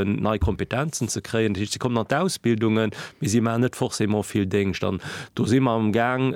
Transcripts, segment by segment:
nei Kompetenzen ze kréien. Dat heescht, se kommen an d'Ausbildungen, mee si maachen net forcément vill Déngscht. An do si mer amgaang,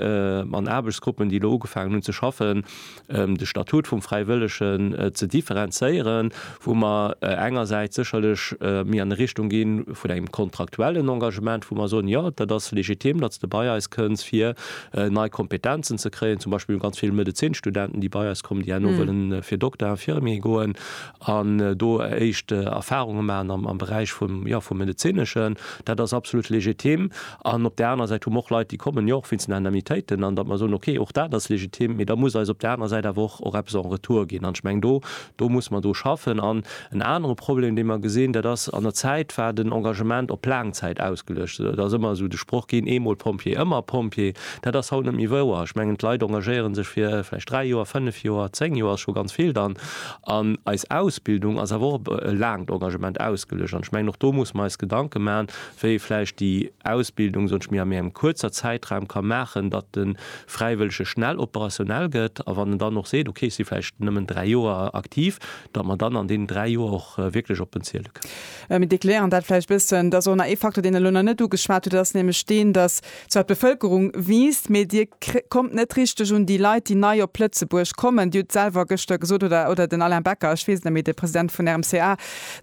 an Aarbechtsgruppen, déi elo ugefaangen hunn ze schaffen, de Statut vum Fräiwëllegen ze differenzéieren, wou mer engersäits sécherlech méi an Richtung gi vun engem kontraktuellen Engagement, wou mer soen, jo, dat ass legitim, datt s de bei eis kënns, fir nei Kompetenzen ze kréien. Zum Beispill hu mer ganz vill Medezinstudenten, déi bei eis kommen, déi herno wëllen fir Dokter-Infirmier goen. an do éischt Erfahrunge maachen am Beräich vum, jo, vum Medezineschen, dat ass absolut legitim. An op där anerer Säit hu mer och Leit, déi kommen jo och wéinst den Indemnitéiten, an datt mer soen, okay, och dat ass legitim, mee da muss eis op där anerer Säit awer och, och eppes en retour ginn. An ech mengen, do, do muss mer dru schaffen. An en anere Problem, dee mer gesinn, dat ass, an der Zäit war den Engagement op laang Zäit ausgeluecht. Et ass ëmmer esou de Sproch ginn, eemol Pompjee, ëmmer Pompjee. Dat ass haut net méi wouer. Ech mengen, d'Leit engagéiere sech fir vläicht dräi Joer, fënnef Joer, zéng Joer, ass scho ganz vill dann. An eis Ausbildung ass awer och op e laangt Engagement ausgeluecht. An ech mengen, och do musse mer eis Gedanke maachen, wéi ee vläicht déi Ausbildung, soen ech mir, a méi engem kuerzer Zäitraum ka maachen, datt de Fräiwëllege schnell operationell gëtt. A wann en dann och seet, okay, ech si vläicht nëmmen dräi Joer aktiv, datt mer dann an deenen dräi Joer och wierklech op en ziele kënnen. Mir dekleéieren dat vläicht e bëssen. Et ass och nach ee Facteur, deen Der elo nach net ugeschwat hutt. Dat ass nämlech deen, datt Zwar d'Bevëlkerung wiisst, mee Dir kommt net richteg un déi Leit, déi nei op Lëtzebuerg kommen. Dir hutt selwer gëschter gesot, oder, oder den Alain Becker, ech weess et net méi, de President vun RMCA,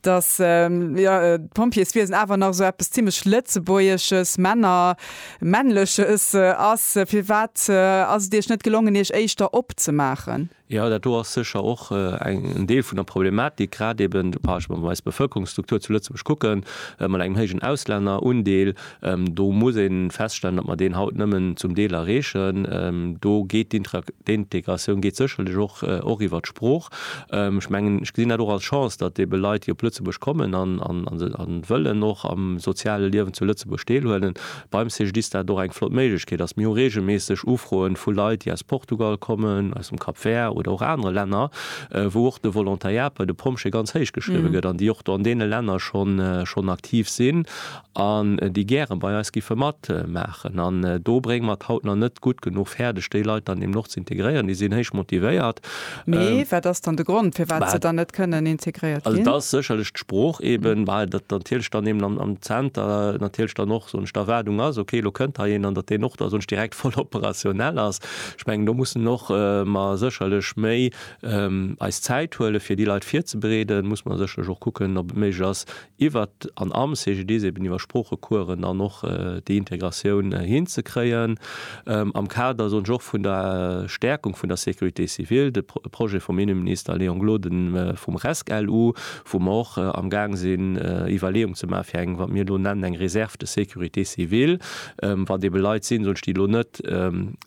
datt, jo, d'Pompjeeswiesen awer nach esou eppes zimlech Lëtzebuergesches, Männer-, männleches ass. Firwat ass et Iech net gelongen, Iech éischter opzemaachen? Jo, dat do ass sécher och en Deel vun der Problematik, grad eben, wa ech mer eis Bevölkerungsstruktur zu Lëtzebuerg kucken, mat engem héijen Auslännerundeel. Do muss ee feststellen, datt mer deen haut nëmmen zum Deel erreechen. Do geet d'Integratioun geet sécherlech och och iwwert d'Sprooch. Ech mengen, ech gesinn dat och als Chance, datt ebe Leit, déi op Lëtzebuerg kommen an wëllen och am soziale Liewen zu Lëtzebuerg deelhuelen, Beim CGDIS ass dat och eng flott Méiglechkeet. Also mir hu reegelméisseg Ufroen vu Leit, déi aus Portugal kommen, aus dem Cap Vert oder och anere Länner, wou och de Volontariat bei de Pompjee ganz héich geschriwwe gëtt an déi och do an deene Länner schonn schonn aktiv sinn an déi gäre bei eis giffe matmaachen. An do brénge mer et haut nach net gutt genuch fäerdeg, déi Leit dann deemno och ze integréieren. Déi sinn héich motivéiert. Mee wat ass dann de Grond, firwat se dann net kënnen integréiert ginn? Also et ass sécherlech d'Sprooch eben, well dat natierlech dann eben am Zenter natierlech dann och, soen ech, d'Erwaardung ass, okay, elo kënnt hei een an datt deen och da soen ech direkt voll operationell ass. Ech mengen, do mussen och mer sécherlech méi eis Zäit huelen, fir déi Leit virzebereeden. Muss mer sécherlech och kucken, ob et méiglech ass, iwwer an am CGDIS eben iwwer Sproochecoursen dann och déi Integratioun hinzekréien, am Kader, soen ech, och vun der Stärkung vun der Sécurité civile, de Projet vum Inneminister Léon Gloden vum RESC-LU, wou mer och amgaang sinn Iwwerleeung ze maachen, fir eng, wat mir elo nennen, eng Réserve de sécurité civile, wat ebe Leit sinn, soen ech, déi elo net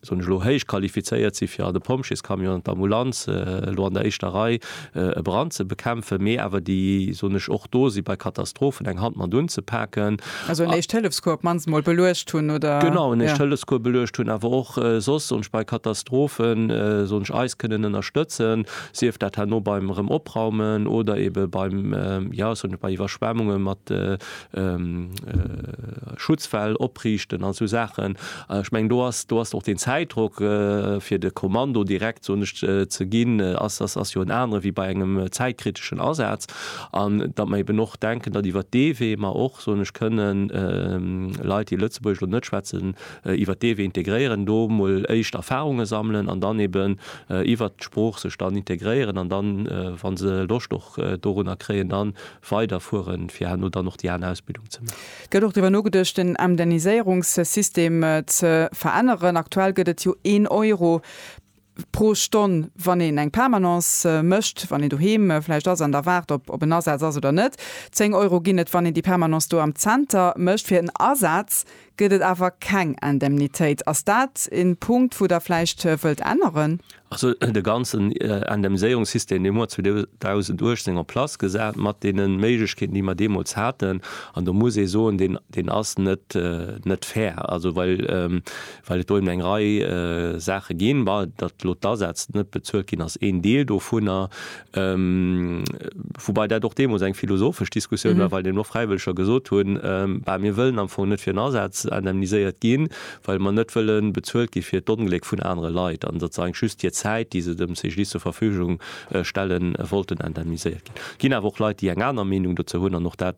soen ech elo, héich qualifizéiert si fir an de Pompjeescamion an d'Ambulanz elo an der éischter Rei e Brand ze bekämpfen, mee awer déi, soen ech, och do si bei Katastrophen eng Hand mat unzepaken. Also en Éischt-Hëllefscours op d'mannst emol beluecht hunn, oder? Genau, en Éischt-Hëllefscours beluecht hunn, awer och soss, soen ech, bei Katastrophen, soen ech, eis kënnen ënnerstëtzen, sief dat herno beim erëm opraumen oder eebe beim, jo, soen ech, bei Iwwerschwemmunge mat Schutzwäll opriichten an esou Saachen. Ech mengen, do ass och deen Zäitdrock, fir de Kommando direkt, soen ech, ze ginn, ass jo en anere wéi bei engem zäitkriteschen Asaz. An datt mer eben och denken, datt iwwer dee Wee mer och, soen ech, kënnen Leit, déi Lëtzebuergesch elo net schwätzen, iwwer dee Wee integréieren, do emol éischt Erfahrunge sammelen an dann eben iwwert d'Sprooch sech dann integréieren an dann, wa se Loscht och dorunner kréien, dann weider fueren, fir herno dann och déi aner Ausbildung ze maachen. Gëtt och driwwer nogedëscht den Emdenniséierungssystem ze veränneren? Aktuell gëtt et jo een Euro pro Stonn, wann een eng Permanence mécht, wann een doheem vläicht ass an da waart, ob ob en Asaz ass oder net. Zéng Euro ginn et, wann een déi Permanence do am Zenter mécht fir en Asaz. gëtt et awer keng Indemnitéit. Ass dat en Punkt wou der vläicht wëllt änneren? Also de ganzen Indemniséierungssystem deen huet 2018 en place gesat mat deene Méiglechkeeten déi mer deemools haten an do muss ee soen, deen deen ass net net fair. Also well well et do eben eng Rei Saache ginn, bah datt elo d'Asätz net bezuelt ginn ass een Deel dovunner, Woubai dat och deemols eng philosophesch Diskussioun war, well eben och Fräiwëlleger gesot hunn, bah, mir wëllen am Fong net fir en Asaz indemniséiert ginn, well mer net wëlle bezuelt gi fir d'Ongléck vun anere Leit an sozesaeng just hir Zäit, déi se dem CGDIS zur Verfügung stellen, wollten indemniséiert ginn. Et ginn awer och Leit, déi eng aner Meenung dozou hunn an och dat.